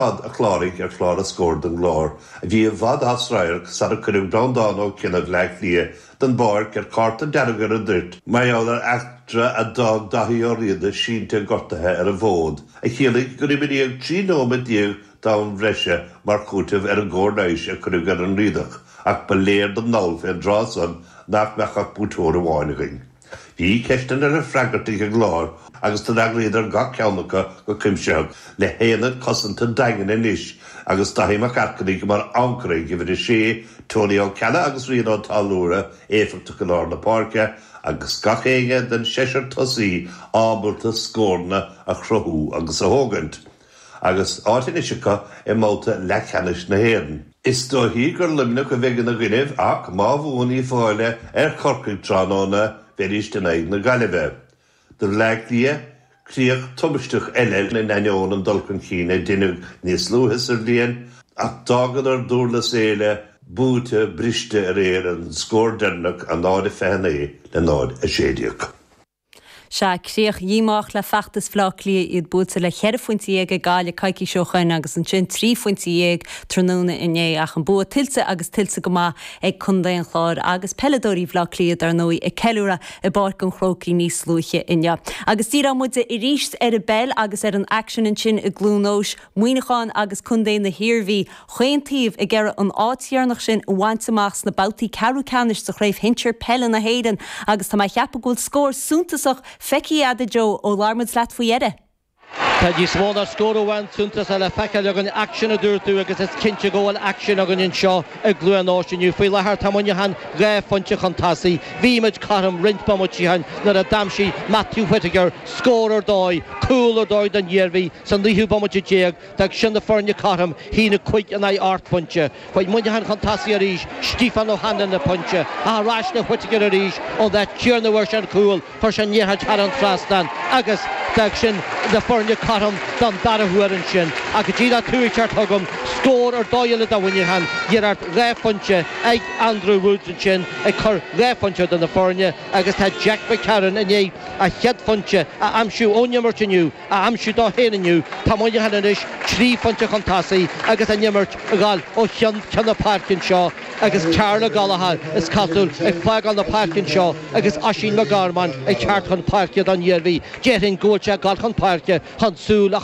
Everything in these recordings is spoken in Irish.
fad a chláraigh ar chlár a scóir don gClár a bhí i bhfad as radharc sara cuireadh Breandán Ó Cionnaith Bhleá Cliath den bpáirc ar chárta dearg ar an dtuirt mar gheall ar eachtra a d'fhág Daithí Ó Riada sínte gortaithe ar an bhfód a chiallaigh gur imríodh 13 nóiméad d'am bhreise mar chúiteamh ar an gcóir leighis a cuireadh ar an Riadach ach ba léir don ndall fén dtráth san nach mbeadh ach buaiteoir amháin againn. Bhí ceisteanna le freagairt ag an gClár agus d'fhreagraíodar gach ceann acu go cuimsitheach le haonad cosanta daingean anois agus Daithí Mac an Airchinnigh mar ancaire ag uimhir a sé, Tony Ó Ceallaigh agus Rian Ó Táilliúra éifeachtach i lár na páirce agus gach éinne den seisear tosaí ábalta scóranna a chruthú agus a thógaint. Agus áit anois acu i mbabhta leathcheannais na hÉireann, is dóichí gur Luimneach a bheidh ina gcoinnibh ach má bhuann Uíbh Fhailí ar Chorcaigh tráthnóna bheidíst in aghaidh na Gaillimhe, do Bhleá Cliath, críoch tubaisteach eile in ainneoin an dul chun cinn a deineadh níos luaithe sa bhliain ach d'fhágadar Durlas Éile buailte briste aréir an scór deireanach, 0:29 le 0:16. Sea, críoch dhíomách le feachtas Bhleá Cliath, iad buailte le ceithre phointe dhéag ag Gaillimh coicís ó shoin agus ansin trí phointe dhéag tráthnóna inné ach an bua tuillte agus tuillte go maith ag Contae an Chláir agus peileadóirí Bhleá Cliath dar ndóigh ag ceiliúradh i bPáirc an Chrócaigh níos luaithe inniu. Agus díreoidh muide arís ar an bpeil agus ar an aicsean ansin i gCluain Eois, Muineachán agus Contae na hIarmhí chaon taobh ag iarraidh an áit dheireanach sin a bhaint amach sna babhtaí ceathrú ceannais de Chraobh Shinsir Peile na hÉireann agus tá mé a cheapadh go bhfuil scór suntasach feicthe agat, a Joe, ó labhair muid leat faoi dheireadh. Tá níos mó ná scór amháin suntasach le feiceáil againn, aicsean, a dúirt tú, agus is cinnte go bhfuil aicsean againn anseo i gCluain Eois inniu. Faoi láthair, tá Muineachán dhá phointe chun tosaigh. Bhí muid cothrom roinnt bomaití ó shin nuair a d'aimsigh Matthew Whittaker scór ar dóigh, cúl ar dóigh don Iarmhí, Sa naoú bomaite déag, d'fhág sin na foirne cothrom, a haon a cúig in aghaidh ocht bpointe, chuaigh Muineachán chun tosaigh arís, Stephen O'Hanlon le pointe, ach ar ais le Whittaker arís ón áit chéanna a fuair sé an cúl, chuir sé an liathróid thar an trasnán agus d'fhág sin na foirne cothrom don dara huair. Ansin, ach go díreach tú ag teacht chugam, scór ar dóigh eile do Mhuineachán, iarracht dhá phointe ag Andrew Woods ansin ag cur dhá phointe idir na foirne agus tá Jack McCarron i ndiaidh a chéad phointe a aimsiú ón imirt inniu, a aimsiú dó féin inniu, tá Muineachán anois trí phointe chun tosaigh agus an imirt ag gabháil ó cheann ceann na páirce anseo agus Karl Gallagher, is cosúil, ag fágáil na páirce anseo agus Oisín McGorman ag teacht chun páirce don Iarmhí. Déarfainn go bhfuil sé ag dul chun páirce chun súil a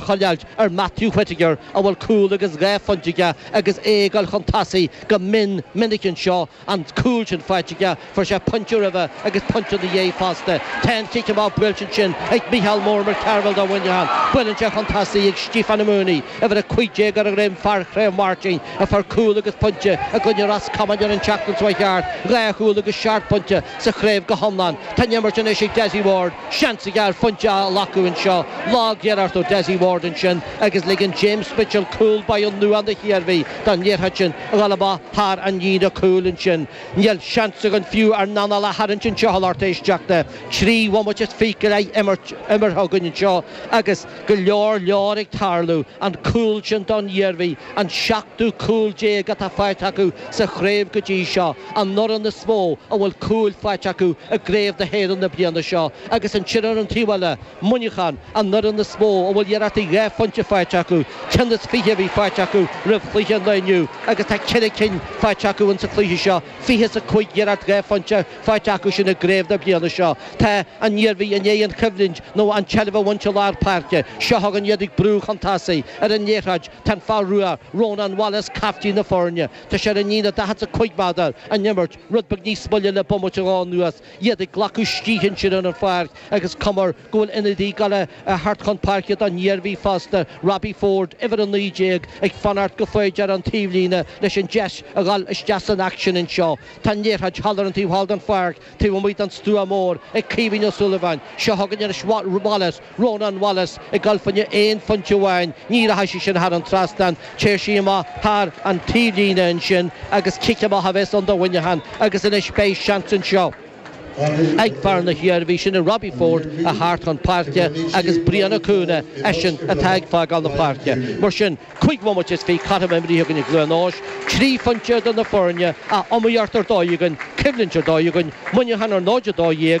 choinneáilt ar Matthew Whittaker a bhfuil cúl agus dhá phointe aige agus é ag dul chun tosaigh go mion minic anseo an cúl sin faighte aige, fuair sé pointe roimhe agus pointe ina dhiaidh fosta. Tá an cic amach buailte ansin ag Micheál mór Mac Cearbhaill do Mhuineachán. Buaileann sé chun tosaigh ag Stiofán Mooney, uimhir 15, ar a dhroim, fear Chraobh Mháirtín, a fuair cúl agus pointe i gcoinne Ros Comáin ar an tseachtain seo a chuaigh thart dhá chúl agus seacht pointe sa chraobh go hiomlán. Tá an imirt anois ag Dessie Ward, seans aige ar phointe a ghlacadh anseo. Lagiarracht ó Dessie Ward ansin agus ligeann James Mitchell, cúl báire nua na hIarmhí, don liathróid sin. a ghabháil amach thar an líne chúil ansin. Níl seans againn fiú ár n-anáil a tharraingt anseo a lucht éisteachta. Trí bhomaite is fiche imeartha againn anseo agus go leor leor ag tarlú. An cúl sin don Iarmhí, an seachtú cúl déag atá faighte acu sa chraobh go dtí seo, an fhoireann is mó a bhfuil cúil faighte acu i gCraobh na hÉireann na bliana seo, agus ansin ar an taobh eile, Muineachán, An fhoireann is mó a bhfuil iarrachtaí dhá phointe faighte acu, ceann is fiche a bhí faighte acu roimh chluiche an lae inniu agus tá ceithre cinn faighte acu insa chluiche seo, fiche is a cúig iarracht dhá phointe faighte acusan i gcraobh na bliana seo. Tá an Iarmhí i ndiaidh an choimhlint nó an tseilbh a bhaint i lár páirce, seo chugainn iad ag brú chun tosaigh. Ar an liathróid tá an fear rua Rónán Wallace, caiftín na foirne. Tá sé ar an líne daichead is a cúig méadar, an imirt rud beag níos moille le bomaite nó dhó anuas. Iad ag glacadh scíth ansin ar an pháirc agus cuma air go bhfuil ionadaí ag gabháil a theacht chun páirce don Iarmhí fosta, Robbie Ford, uimhir 19, ag fanacht go foighdeach ar an taobhlíne leis an deis a ghabháil isteach san aicsean anseo. Tá an liathróid thall ar an taobh thall den pháirc, taobh amuigh den stua mór, ag Caoimhín Ó Súilleabháin. Seo chugainn anois Wallace. Rónán Wallace ag gabháil fá choinne aon phointe amháin, ní rachaidh sí sin thar an trasnán, téann sí amach thar an taobhlíne ansin agus cic amach a bheas ann do Mhuineachán agus anois beidh seans anseo ag fear na hIarmhí, sin é Robbie Forde a theacht chun páirce agus Brian Ó Cuana, eisean atá ag fágáil na páirce. Mar sin, cúig bhomaite is fiche caite nó imeartha againn i gCluain Eois, trí phointe idir na foirne, ach iomaíocht ar dóigh againn, coimhlint ar dóigh againn, Muineachán ar 0-12,